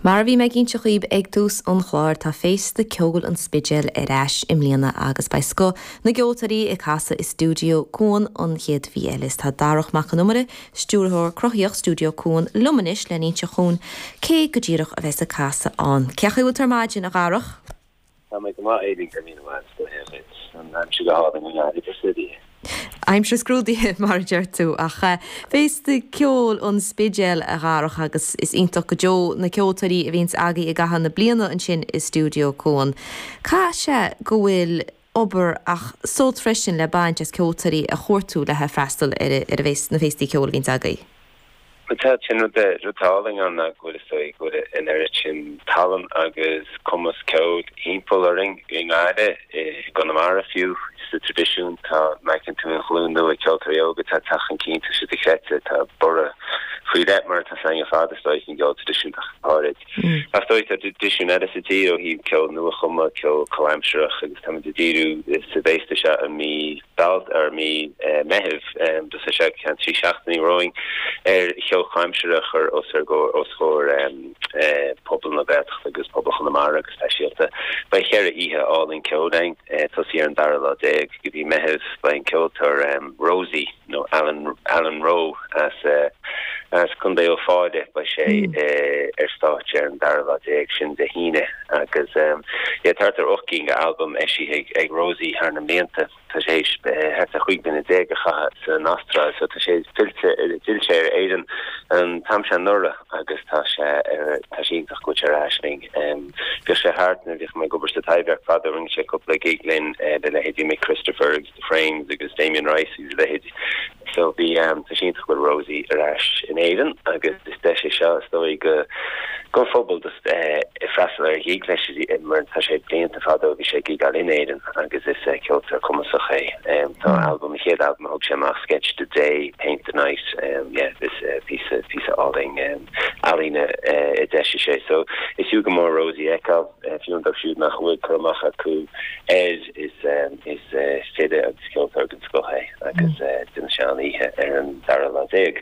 Mar a bhí mé ag inseacht dhaoib ag tús an chláir, tá Féasta Ceoil an Spidéil ar ais i mbliana agus beidh scoth na gceoltóirí ag casadh i Stiúideo Cuan an chéad mhí eile. Is tá Darach Mac an Iomaire, Stiúrthóir Cruthaíocht Stiúideo Cuan, liom anois lena inseacht dhúinn cé go díreach a bheas ag casadh ann. Cén chaoi a bhfuil tú ar maidin, a Dharach? Tá mé go maith uilig, a Mháire Bríd, go raibh maith agat. An aimsir go hálainn i ngar idir suirí. Aimsir scrúdaithe, mar a deir tú. Ach féasta ceoil an Spidéil, a Dharach, agus is iontach go deo na ceoltóirí a bhíonns agaí i gcaitheamh na bliana ansin i Stiúideo Cuan. Caithfidh sé go bhfuil obair ach sult freisin le baint as ceoltóirí a chuartú le freastal ar na féastaí ceoil a bhíonns agaí. Tá sin rud atá álainn ann ná go bhfuil is dóigh go bhfuil an oiread sin tallann agus cumas ceoil thimpeall orainn i nGaillimh, i gConamara fiú, sa traidisiún. Tá, an bhfeiceann tú, an ghlúin nua ceoltóirí óga atá ag teacht chun cinn, tá siad dochreidte, tá borradh faoi leith mar atá a fhios againn ar fad is dóigh faoin gceol traidisiúnta ach go háirid. Ach is dóigh, tá traidisiún eile sa tír ó thaobh ceol nua-chumtha, ceol comhaimsireach, agus táimid ag díriú sa bhféasta seo i mí Bealt, ar mí Meithimh, do seo seo ceann trí seachtainí romhainn, ar cheol comhaimsire a chur os ar gcomhair, os chomhair pobal na Gaeltachta agus pobal Chonamara go speisialta. Beidh cheithre oíche álainn ceoil againn, tosaí ar an dara lá déag go mhí Meithimh, beidh an ceoltóir Roesy, nó Alan, Alan Roe as, as Contae Uíbh Fhailí, beidh sé ar stáitse ar an dara lá déag sin Dé hAoine agus yeah thart ar ocht gcinn go albam eisithe ag, ag Roesy thar na mblianta. Tá sé théis thart ar chúig bliana déag a chaitheamh san Astráil so tá sé fillte, d'fhill sé ar Éirinn an t-am seo anuraidh agus tá sé ar, tá sé iontach go bhfuil sé ar ais linn. Bhíodh sé thart nuair a bhíodh mé ag obair sa Taibhdhearc fadó, rinne sé cúpla gig linn le leithéidí Mic Christopher, Frames agus Damien Rice agus a leithéid. So bhí, tá sé iontach go bhfuil Roesy ar ais in Éirinn agus is deis é seo is dóigh go, don phobal just eh freastal ar a ghig leis mar tá sé blianta fada ó bhí sé ag gigeáil in Éirinn agus is eh ceoltóir cumasach é. Em tá albam, a chéad albam a thug sé amach Sketch the Day, Paint the Night, em yeah is eh píosa, píosa álainn em ealaíne eh a d'eisigh sé. So is fiú go mór Roesy a fheiceáil, eh fiú dóibh siúd nach bhfuil cur amach acu air. Is file agus ceoltóir den scoth é agus déanfaidh sé an-oíche ar an dara lá déag.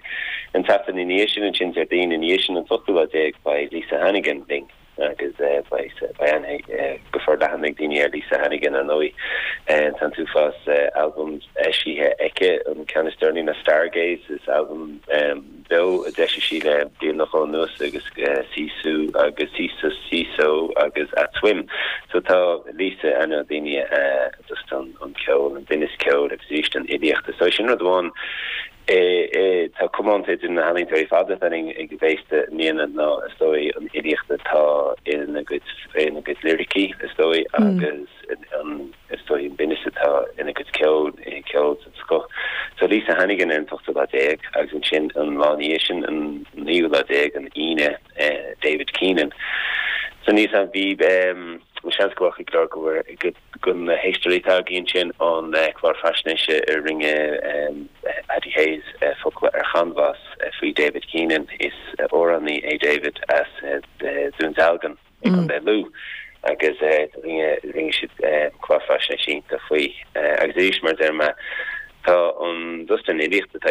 An tseachtain i ndiaidh sin, ansin Déardaoin i ndiaidh sin an t-ochtú lá déag, beidh Lisa Hannigan linn agus beidh aithne go forleathan ag daoine ar Lisa Hannigan, ar ndóigh. Tá an t-uafás albam eisithe aici, an ceann is deireanaí ná Stargaze, is albam. beo a d'eisigh sí le bliain go leith anuas agus Sisu agus Sisus Siso agus At Swim so tá liosta ainmneacha daoine a dtugtar an ceol an binneas ceoil agus arís an fhilíocht so sin rud amháin atá comónta idir na healaíontóirí ar fad atá linn ag an bhféile i mbliana ná is dóigh an fhilíocht atá in a gcuid in a gcuid liricí is dóigh agus an Is dóigh an binneas atá ina gcuid ceoil é ceol den scoth. Tá Lisa Hannigan ar an ochtú lá déag agus ansin an lá ina dhiaidh sin, an naoú lá déag, an Aoine, David Keenan. So níos, an, bhí, seans go bhfaca cuid de do chuid éisteoirí tá a fhios againn ansin an clár faisnéise a rinne Paddy Hayes, Focla ar Chanbhás, faoi David Keenan. Is amhránaí é David as Dún Dealgan. i gContae Lú agus rinne siad clár faisnéis iontach faoi. Agus arís, mar a deir mé, tá an dusta an fhilíocht atá.